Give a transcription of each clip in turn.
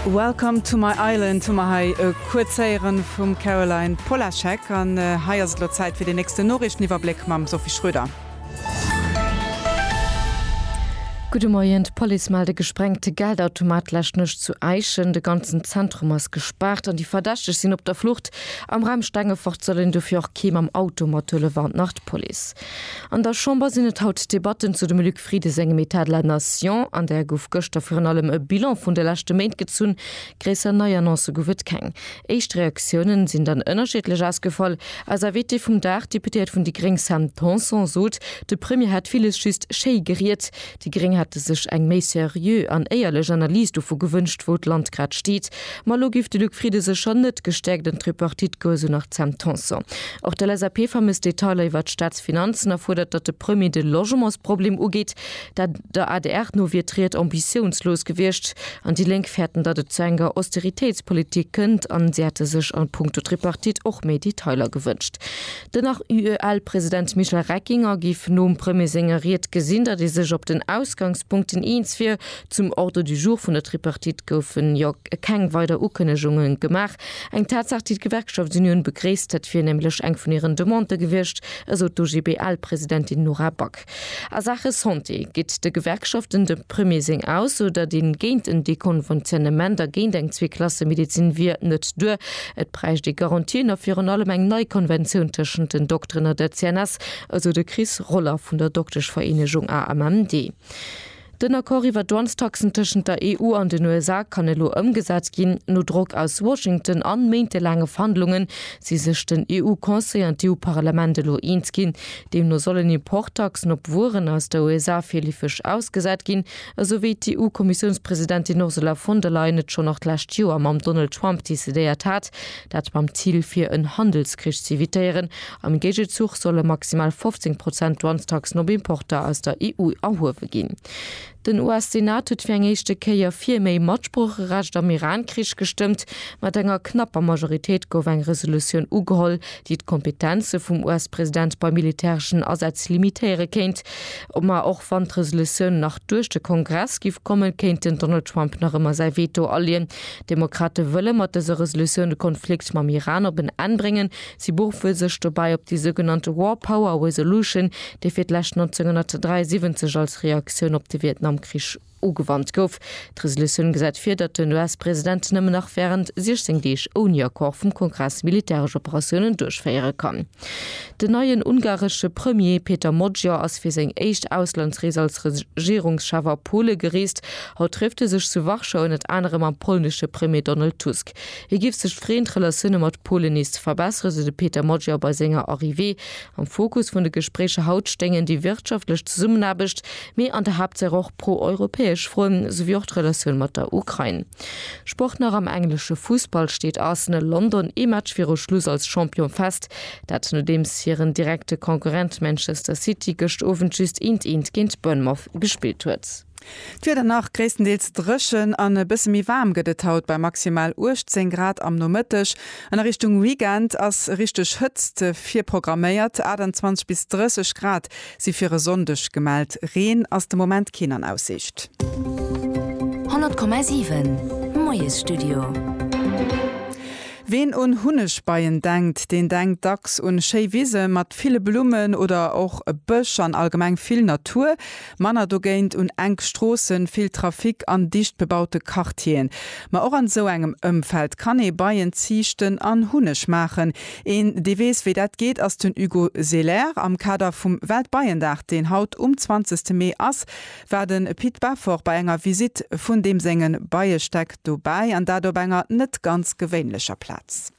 Welcome to my island hu mer hei e kuerz héieren vum Caroline Polaschek. An hei ass et elo Zäit fir den nächsten Noriichteniwwerbléck mam Sophie Schröder. Gudde Moien, D'Police mellt e gesprengte Geldautomat d'lescht Nuecht zu Äischen. De ganzen Zentrum ass gespaart an déi Verdächteg sinn op der Flucht. Am Raum Stengefort soll een dofir och kee mam Auto mathuelen, warnt nach d'Police. An der Chamber sinn et haut Debatten zu dem Luc. Friede sengem État de la nation, an där gouf gëschter virun allem e Bilan vun de leschte Méint gezunn. Gréisser nei Annoncë gouf et keng. Éischt Reaktiounen sinn dann ënnerschiddlech ausgefall. Eis Invitée vum Dag, d'Deputéiert vun déi gréng Sam Tanson sot, de Premier hätt villes just schéi geriet. Déi gréng hätte sech eng méi seriö an éierlech Analys dovu gewënscht, wou d'Land grad steet. Ma lo giff de Luc Frieden sech schonn net gestäerkt an d'Tripartite goen, esou nach d'Sam Tanson. Och d'LSAP vermësst Detailer iwwert d'Staatsfinanzen a fuerdert, datt de Premier de Logementsproblem ugeet. Der adr no wier d'Ried ambitiounslos gewiescht an déi Lénk fäerten, datt et zu enger Austeritéitspolitik kënnt an si hätte sech a Punkto Tripartite och méi Detailer gewënscht. Den nach UEL-President Michel Reckinger géif nom Premier senger Ried gesinn, datt ee sech op den Ausgangspunkten eens wier. Zum Ordre du jour vun der Tripartite goufen jo keng weider Ukënnegunge gemaach. Eng Tatsaach, déi d'Gewerkschaftsunioun begréisst. Dat wier nämlech eng vun hiren Demandë gewiescht, esou d'OGBL-Presidentin Nora Back. A Saache Santé geet de Gewerkschaften de Premier seng Ausso, datt ee géint en Dekonventionnement a géint eng Zweeklassemedezin wier, net duer. Et bräicht ee Garantien a virun allem eng nei Konventioun tëschent den Dokteren a der CNS, esou de Chris Roller vun der Dokteschvereenegung AMMD. Den Accord iwwer d'Dwangs-Taxen tëschent der EU an den USA kann elo ëmgesat ginn. No Drock aus Washington an méintelaange Verhandlungen si sech den EU-Conseil an d'EU-Parlament elo eens ginn. Deemno sollen Importtaxen op Wueren aus der USA virleefeg ausgesat ginn, esou wéi d'EU-Kommissiounspresidentin Ursula von der Leyen et schonn nach d'lescht Joer mam Donald Trump decidéiert hat. Dat mam Zil fir en Handelskrich z'evitéieren Am Géigezuch solle maximal 15 Prozent Douanestaxen op Importer aus der EU erhuewe ginn. Den US-Senat huet fir eng éischte Kéier fir méi Matsproocherecht am Iran-Krich gestëmmt. Mat enger knapper Majoritéit gouf eng Resolutioun ugeholl, déi d'Kompetenze vum US-President bei militäreschen Asätz limitéiere kéint. Ma och wann d'Resolutioun nach duerch de Kongress giff kommen, kéint den Donald Trump nach ëmmer säi Veto aleeën. D'Demokrate wëlle mat dëser Resolutioun de Konflikt mam Iran op en Enn bréngen, Si beruffen sech dobäi op déi sougenannte War Power Resolution, déi fir d'lescht 1973 als Reaktioun op de Vietnamkrich ugewannt gouf. D'Resolutioun gesäit vir, datt den US-President nëmmen nach wärend 16 Deeg ouni Accord vum Kongress militäresch Operatiounen duerchféiere kann. Den neien ungaresche Premier Péter Magyar ass fir seng éischt Auslandsrees als Regierungschef a Pole gereest. Haut trëfft e sech zu Warschau ënnert anerem mam polnesche Premier Donald Tusk. Et giff sech freen d'Relatioune mat Polen nees ze verbesseren, sou de Peter Magyar bei senger Arrivée. Am Fokus vun de Gespréicher haut stéingen déi wirtschaftlech Zesummenaarbecht, mee an der Haaptsaach och pro-europäesch Froen, souwéi och d'Relatioun mat der Ukrain. Sport nach Am englesche Fussball steet Arsenal London ee Match viru Schluss als Champion fest. Dat nodeems hiren direkte Konkurrent Manchester City gëscht Owend just eent eent géint Bournemouth gespillt huet. D'Wieder nach gréisstendeels dréchen an e bësse méi waarm gëtt et haut bei maximal 18 Grad am Nomëtteg an a Richtung Weekend ass richteg Hëtzt virprogramméiert, 28 bis 30 Grad si fir e Sonndeg gemellt. Reen ass de Moment keen an Aussicht. 100,7 Moiesstudio. Ween un Hunnegbeien denkt, deen denkt dacks un schéi Wise mat ville Blummen oder och e Bësch an allgemeng vill Natur. Manner dogéint un enk Stroossen, vill Trafic an dicht bebaute Quartieren. Ma och an esou engem Ëmfeld kann ee Beien ziichten an Hunneg maachen. Een, dee weess, wéi dat geet, ass den Hugo Selaire. Am Kader vum Weltbeiendag, deen haut um 20 Mee ass, war de Pit Beffort bei enger Visitt vun deem senge Beiestäck dobäi, an dat op enger net ganz gewéinlecher Plaz.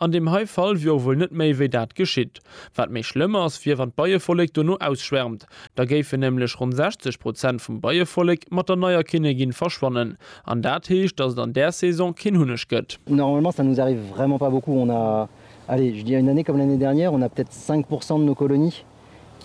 An deem hei Fall wier och wuel net méi wéi dat geschitt. Wat méi schlëmm ass, wier wann d'Beievollek dono ausschwärmt. Da géifen nämlech ronn 60 Prozent vum Beievollek mat der neier Kinnegin verschwannen. An dat heescht, datt et an där Saison keen Hunneg gëtt. Normalement ça nous arrive vraiment pas beaucoup, on a, allez je dirais une année comme l'année dernière, on a peut-être 5 pourcent de nos colonies.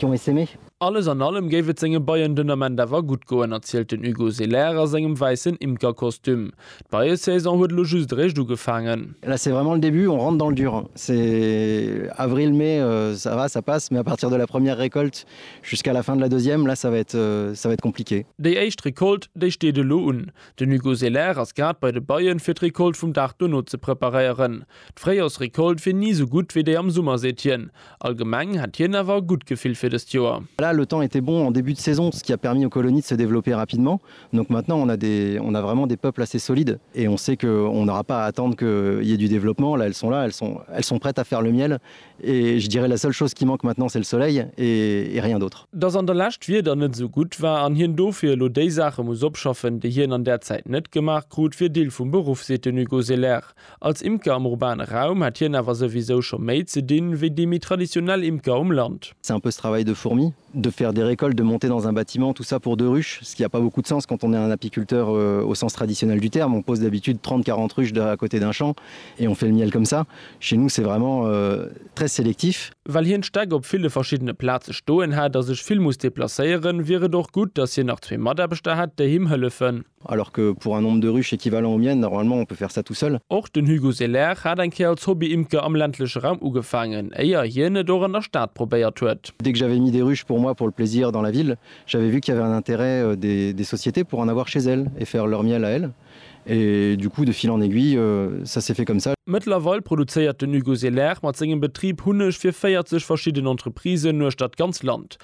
Junge sinn ech. Alles an allem géif et senge Beien den Ament awer gutt goen, erzielt den Hugo Selaire a sengem wäissen Imkerkostüm. D'Beiesaison huet elo just eréischt ugefaangen. Là c'est vraiment le début, on rentre dans le dur. C'est avril, mai, ça va, ça passe, mais à partir de la première récolte jusqu'à la fin de la deuxième, là ça va être, ça va être compliqué. Déi éischt Recolte, déi steet elo un. Den Hugo Selaire ass grad bei de Beien, fir d'Recolte vum Dag dono ze preparéieren. D'Fréijorsrecolte wier ni sou gutt wéi déi am Summer, seet hien. Allgemeng hätt hien awer e gutt Gefill fir dëst Joer. Voilà, le temps était bon en début de saison, ce qui a permis aux colonies de se développer rapidement. Donc maintenant on a des, on a vraiment des peuples assez solides et on sait que on n'aura pas à attendre qu'il y ait du développement. Là, elles sont là, elles sont, elles sont prêtes à faire le miel et je dirais la seule chose qui manque maintenant c'est le soleil et et rien d'autre. Dass an der Lescht d'Wieder net esou gutt war an hien dofir elo déi Saache muss opschaffen, déi hien an där Zäit net gemaach krut, wier Deel vum Beruff, seet den Hugo Selaert. Als Imker am urbane Raum hätt hien awer souwisou scho méi ze dinn, wéi déi méi traditionell Imker um Land. C'est un peu ce travail de fourmi, de faire des récoltes, de monter dans un bâtiment, tout ça pour deux ruches, ce qui a pas beaucoup de sens quand on est un apiculteur au sens traditionnel du terme, on pose d'habitude 30-40 ruches à côté d'un champ et on fait le miel comme ça. Chez nous c'est vraiment très sélectif. Well hien d'Stäck op ville verschiddene Plaze stoen hätt a sech vill muss deplacéieren, wier et och gutt, datt hien nach zwee Mataarbechter hätt, déi him hëllefen. Alors que pour un nombre de ruches équivalent au mien, normalement, on peut faire ça tout seul. Och den Hugo Selaire hat eng Kéier als Hobby-Imker am ländleche Raum ugefaangen, éier hien et och an der Stad probéiert huet. Dès que j'avais mis des ruches pour moi pour le plaisir dans la ville, j'avais vu qu'il y avait un intérêt des sociétés pour en avoir chez elles et faire leur miel à elles. Et du coup, de fil en aiguille, ça s'est fait comme ça. Mëttlerweil produzéiert den Hugo Selaire mat sengem Betrib Hunneg fir 40 verschidden Entreprisen uechter d'ganz Land.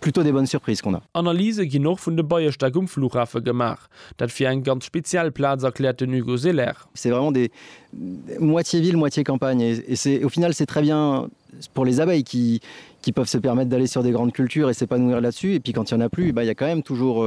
Plutôt des bonnes surprises qu'on a. Analyse ginn och vun de Beierstéck um Flughafe gemaach. Dat wier eng ganz speziell Plaz, erkläert den Hugo Selaire. C'est vraiment des moitié ville, moitié campagne et c'est au final c'est très bien pour les abeilles qui qui peuvent se permettre d'aller sur des grandes cultures et s'épanouir là-dessus et puis quand il y en a plus, eh ben il y a quand même toujours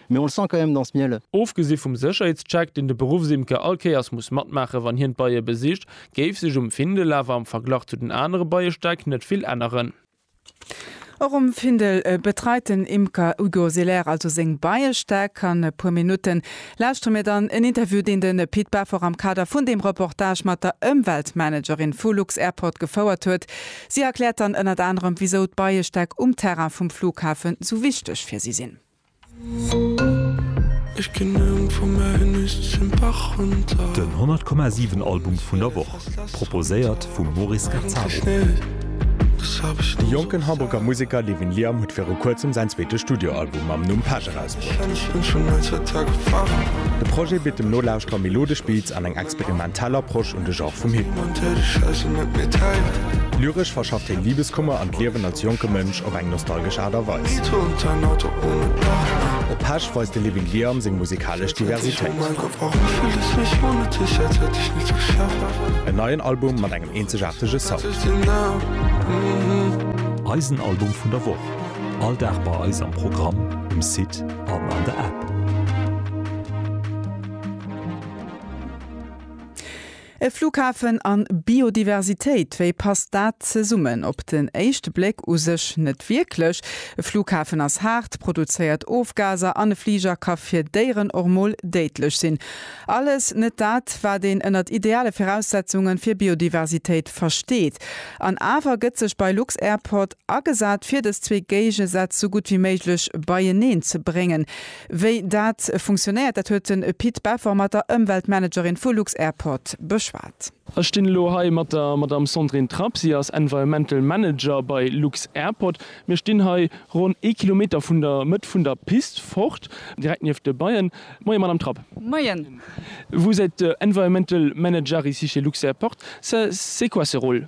Mais on le sent quand même dans ce miel. Ofgesi vum Sécherheetscheck, deen de Beruffsimker all Kéiers muss matmaache wann hien d'Beie besicht, géif sech um Findel awer am Verglach zu den anere Beiestäck net vill änneren. Och um Findel betreit den Imker Hugo Selaire also seng Beiestäck. An e puer Minutte lauschtere mir dann en Interview, deen de Pit Beffort am Kader vun deem Reportage mat der Ëmweltmanagerin vu lux-Airport gefouert huet. Si erkläert dann ënnert anerem, wisou d'Beiestäck um Terrain vum Flughafen sou wichteg fir si sinn. Den 100 Komma 7 Album vun der Woch, proposéiert vum Moris Gazzaro. De jonken Hamburger Museker Levin Liam huet viru kuerzem säin zweete Studioalbum mam Numm Pech erausbruecht. De Projet bitt dem Nolauschterer melodesch Beats an eng experimentell Soundfassung. Tel Approche un de Genre vum Hip-Hop. Lyresch verschafft hien Libeskummer an d'Liewen als jonke Mënsch op eng nostalgesch Aart a Weis. Op Pesch weist de Living Liam seng musikalesch Diversitéit. En neien Album mat engem eenzegaartege Sound. Eisen Album vun der Woch, all Dag bei eis am Programm, um Site an an der App. E Flughafen an Biodiversitéit, wéi passt dat zesummen? Op den éischte Bléck u sech net wierklech. E Flughafen ass haart, produzéiert Ofgaser an e Fliger ka fir Déieren och mol déidlech sinn. Alles net dat, wat een ënnert ideale Viraussetzunge fir Biodiversitéit versteet. An awer gëtt sech bei lux-Airport agesat, fir dës zwee Géigesätz sou gutt wéi méiglech beieneen ze bréngen. Wéi dat funktionéiert, dat huet de Pit Beffer mat der Ëmweltmanagerin vu lux-Airport beschwat. Ech stinn elo hei mat der Madamm Sandrine Trapp. Si ass Environmental Manager bei lux-Airport. Mir stinn hei ronn ee Kilometer vun der Mëtt vun der Pist fort, direkt nieft de Beien. Moien, Madamm Trapp. Moien. Vous êtes Environmental Manager ici chez lux-Airport. C'est quoi ce rôle?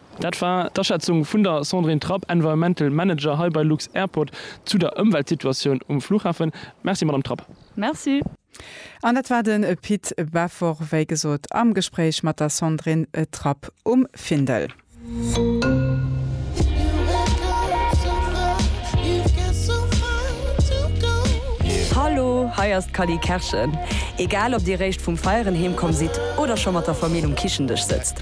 Dat war d'Aschätzung vun der Sandrine Trapp, Environmental Manager hei bei lux-Airport, zu der Ëmweltsituatioun um Fluchhafen. Merci, Madamm Trapp. Merci. An dat war den Pit Bevor, wéi gesot, am Gespréich mat der Sandrine Trapp um Findel. Hallo, hei ass d'Cally Kerschen. Egal ob Dir réischt vum Feieren heemkomm sidd oder scho mat der Famill um Kichendësch sëtzt,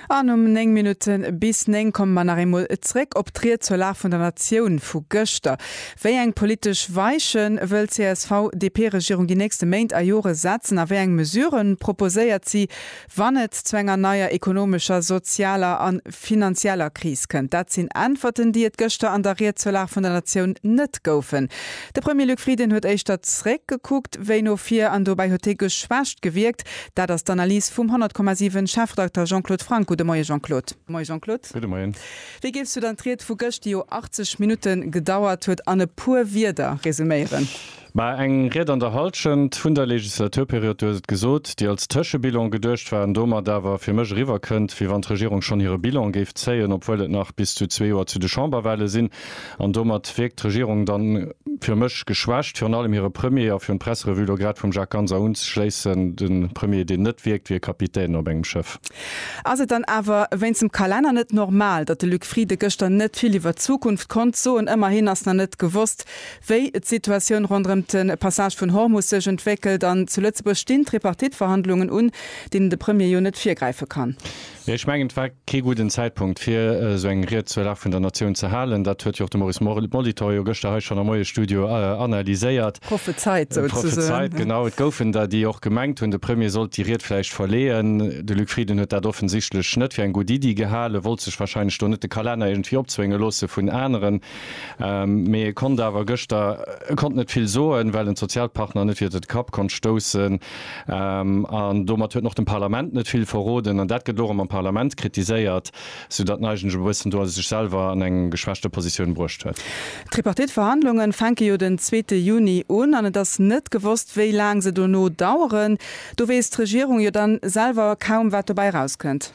An um 9 Minutten bis 9 komme mer nach eemol zréck op d'Ried zur Lag vun der Natioun vu gëschter. Wéi eng politesch Weiche wëll d'CSV-DP-Regierung déi nächste Méint a Jore setzen a wéi eng Mesurë proposéiert si, wann et zu enger neier ekonomescher, sozialer a finanzieller Kris kënnt? Dat sinn Äntwerten, déi et gëschter an der Ried zur Lag vun der Natioun net goufen. De Premier Luc Frieden huet éischter zréckgekuckt wéi no vir an dobäi huet hie geschwächt gewierkt. Dat ass d'Analys vum 100,7 Chefredakter Jean-Claude Franck. Gudde Moie Jean-Claude. Moie Jean-Claude. Gudde Moien. Wéi géifs du dann d'Ried vu gëscht, déi jo 80 Minutte gedauert huet, an e puer Wierder resuméieren? Mä eng Ried an der Hallschent vun der Legislaturperiod, du hues et gesot, déi als Tëschebilan geduecht war an domat awer fir mech eriwwer kënnt, wéi wann d'Regierung schonn hire Bilan géif zéien, obwuel et nach bis zu zwee Joer zu de Chamberwahle sinn. An domat wierkt d'Regierung dann fir mech geschwächt. Virun allem hire Premier, a virun d'Presserevue lo grad vum Jacques Ganser unzeschléissen, de Premier deen net wierkt wéi e Kapitän op engem Schëff. Ass et dann awer wéinst dem Kalenner net normal, datt de Luc Frieden gëschter net vill iwwert d'Zukunft konnt soen? Ëmmerhin ass nach net gewosst, wéi d'Situatioun ronderëm de Passage vun Hormus sech entwéckelt. An zu Lëtzebuerg stinn d'Tripartite-Verhandlungen un, deenen de Premier jo net virgräife kann. Ech mengen, et war kee gudden Zäitpunkt, fir esou eng Ried zur Lag vun der Natioun ze halen. Dat huet jo och de Maurice Molitor jo gëschter hei schonn am Moiesstudio analyséiert. Prophezeit, souzesoen. Prophezeit, genau. Et goufen der, déi och gemengt hunn, de Premier sollt déi Ried vläicht verleeën. De Luc Frieden huet dat offensichtlech net fir eng gutt Iddi gehalen, wollt sech warscheinlech do net de Kalenner iergendwéi opzwénge loosse vun aneren. Mee e konnt awer gëschter, e konnt net vill soen, well en d'Sozialpartner net iwwert e Kapp konnt stoussen. An domat huet en och dem Parlament net vill verroden. An dat gëtt elo erëm am Parlament kritiséiert, soudatt en eigentlech e bëssen do sech selwer an eng geschwächte Positioun bruecht huet. D'Tripartite-Verhandlunge fänke jo den zweete Juni un an et ass net gewosst, wéi laang se dono daueren. Do weess d'Regierung jo dann selwer kaum, wat dobäi erauskënnt.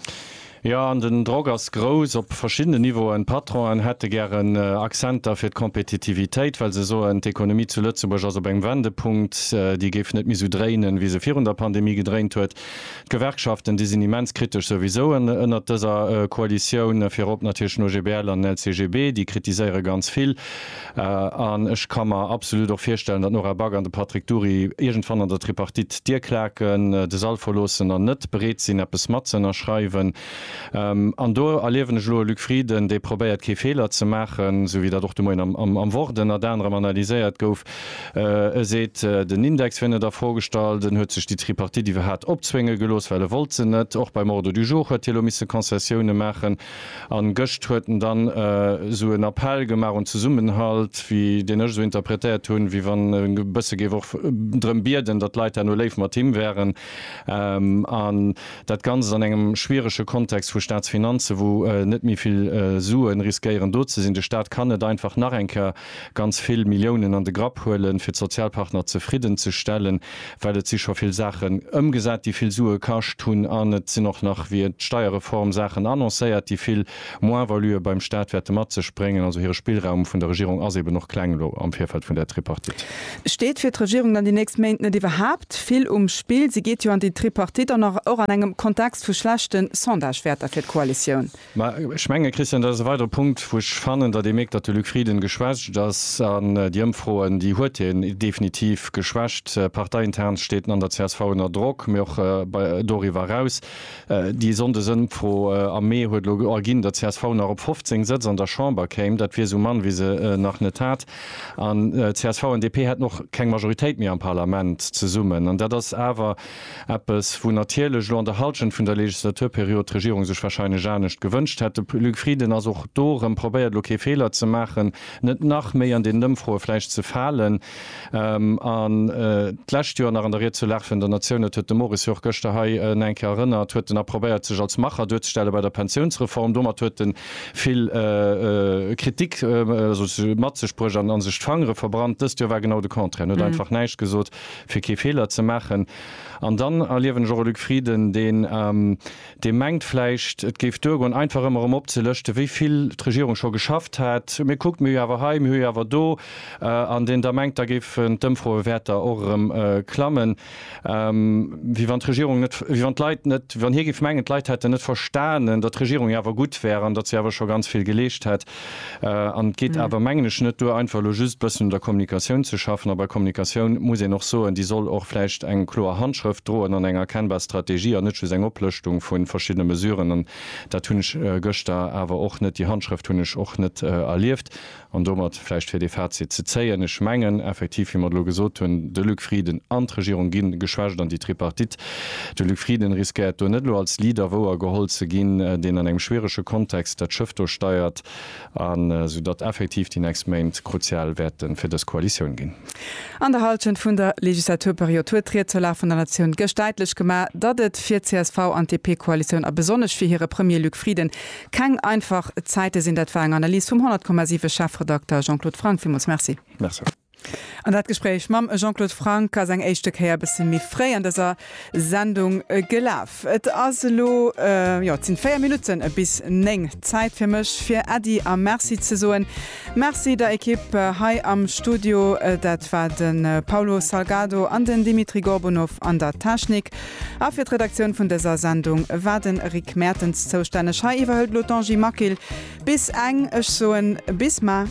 Jo, an den Drock ass grouss op verschiddenen Niveauen. D'Patronen hätte gären Akzenter fir d'Kompetitivitéit, well se soen, d'Ekonomie zu Lëtzebuerg ass op engem Wendepunkt, déi géif net méi esou dréinen, wéi se virun der Pandemie gedréint huet. D'Gewerkschaften, déi sinn immens kritesch souwisou ënnert dëser Koalitioun, virop natierlech den OGBL an den LCGB, déi kritiséiere ganz vill. An ech ka mer absolut och virstellen, datt d'Nora Back an de Patrick Dury iergendwann an der Tripartite d'Dier klaken, de Sall verloossen an net bereet sinn, eppes matzënnerschreiwen. An do erliewen ech elo e Luc Frieden, dee probéiert, kee Feeler ze maachen, esou wéi dat och de Moien am Wort ënnert anerem analyséiert gouf. E seet, den Index wier net a Fro gestallt, en huet sech déi Tripartite iwwerhat opzwénge gelooss, well e wollt se net. Och beim Ordre du jour huet hie elo misse Concessioune maachen. An gëscht huet en dann esou en Appell gemaach un Zesummenhalt, wéi deen ech esou interpretéiert hunn, wéi wann e bësse géif och drëm bieden, datt d'Leit herno léif mat him wären. An dat Ganzt an engem schwierege Kontext vu Staatsfinanzen, wou net méi vill Suen riskéieren do ze sinn. De Staat kann net einfach nach eng Kéier ganz vill Milliounen an de Grapp huelen, fir d'Sozialpartner zefridden ze stellen, well et si scho vill Saachen ëmgesat, déi vill Sue kascht hunn, an et sinn och nach via d'Steierreform Saachen annoncéiert, déi vill Moins-valuë beim Stat wäerte mat sech bréngen. Also hire Spillraum vun der Regierung ass eben och kleng elo am Virfeld vun där Tripartite. Steet fir d'Regierung dann déi nächst Méint net iwwerhaapt vill um Spill? Si geet jo an déi Tripartite an och an engem Kontext vu schlechten Sondagewäerter fir d'Koalitioun. Mä ech mengen, Christian, dat ass e weidere Punkt, wou ech fannen, datt ee mierkt, datt de Luc Frieden geschwächt ass. An déi Ëmfroen, déi huet hien definitiv geschwächt. Parteiintern steet en an der csv ënner Drock, mee och bei doriwwer eraus. Déi Sonndesëmfro am Mee huet elo erginn, datt csv nach op 15 Sëtz an der Chamber kéim. Dat wier esou mann, wéi se nach net hat. An csv an DP hätten och keng Majoritéit méi am Parlament zesummen. An dat ass awer Eppes, wou natierlech elo an der Hallschent vun der Legislaturperiod d'Regierung sech wahrscheinlech anescht gewënscht hätt. De Luc Frieden ass och do erëm, probéiert elo kee Feeler ze maachen, net nach méi an deenen Ëmfroe vläicht ze falen. An d'lescht Joer nach an der Ried zur Lag vun der Natioun, dat huet de Moris jo och gëschter hei nach eng Kéier erënnert, huet en nach probéiert sech als Macher duerzestelle bei der Pensiounsreform. Domat huet e vill Kritik mat sech bruecht an sech d'Fangere verbrannt. Dëst Joer war genau de Contraire, en huet einfach näischt gesot. fir kee Feeler ze maachen. An dann erliewen ech och e Luc Frieden, deen, dee mengt vläicht, et géif duergoen, einfach ëmmer erëm opzelëschte wéi vill d'Regierung scho geschafft hätt, mee kuckt, mir hu jo awer hei, mir hu jo awer do, an deen da mengt, da géifen d'Ëmfroewäerter och erëm klammen, wéi wann d'Regierung net, wéi wann d'Leit net, wéi wann hie géif mengen, d'Leit hätten net verstanen, datt d'Regierung jo awer gutt wär an datt si awer scho ganz vill geleescht hätt. An et geet awer, mengen ech, net duer, einfach elo just e bëssen un der Kommunikatioun ze schaffen. A bei Kommunikatioun muss een och soen, déi soll och vläicht eng kloer Handschrëft droen an eng erkennbar Strategie an net just eng Oplëschtung vu verschiddene Mesuren. An dat hunn ech gëschter awer och net, déi Handschrëft hunn ech och net erlieft. An domat vläicht fir dee Fazit ze zéien, Ech mengen effektiv, wéi mer et elo gesot hunn, de Luc Frieden an d'Regierung gi geschwächt an déi Tripartite De Luc Frieden riskéiert do net elo als Leader wouer geholl ze ginn, deen an engem schwierege Kontext dat Schëff do steiert, an esou datt effektiv déi nächst Méint kruzial wäerte fir dës Koalitioun ginn. An der Hallschent vun der Legislaturperiod huet d'Ried zur Lag vun der Natioun gëscht däitlech gemaach, datt et fir csv an DP-Koalitioun a besonnesch fir hire Premier Luc Frieden keng einfach Zäite sinn. Dat war eng Analys vum 100,7 Chefredakter Jean-Claude Franck. Villmools Merci. Merci. An dat Gespréich mam Jean-Claude Franck ass eng éischte Kéier e bësse méi fréi an dëser Sendung gelaf. Et ass elo, jo, et sinn 4 Minutten bis 9, Zäit fir mech fir Äddi a Merci ze soen. Merci der Ekipp hei am Studio, dat war de Paulo Salgado an den Dimitri Gorbunov an der Technik. A fir d'Redaktioun vun dëser Sendung war de Rick Mertens zoustänneg. Hei iwwerhëlt elo d'Angie Maquil bis eng. Ech soen bis mar.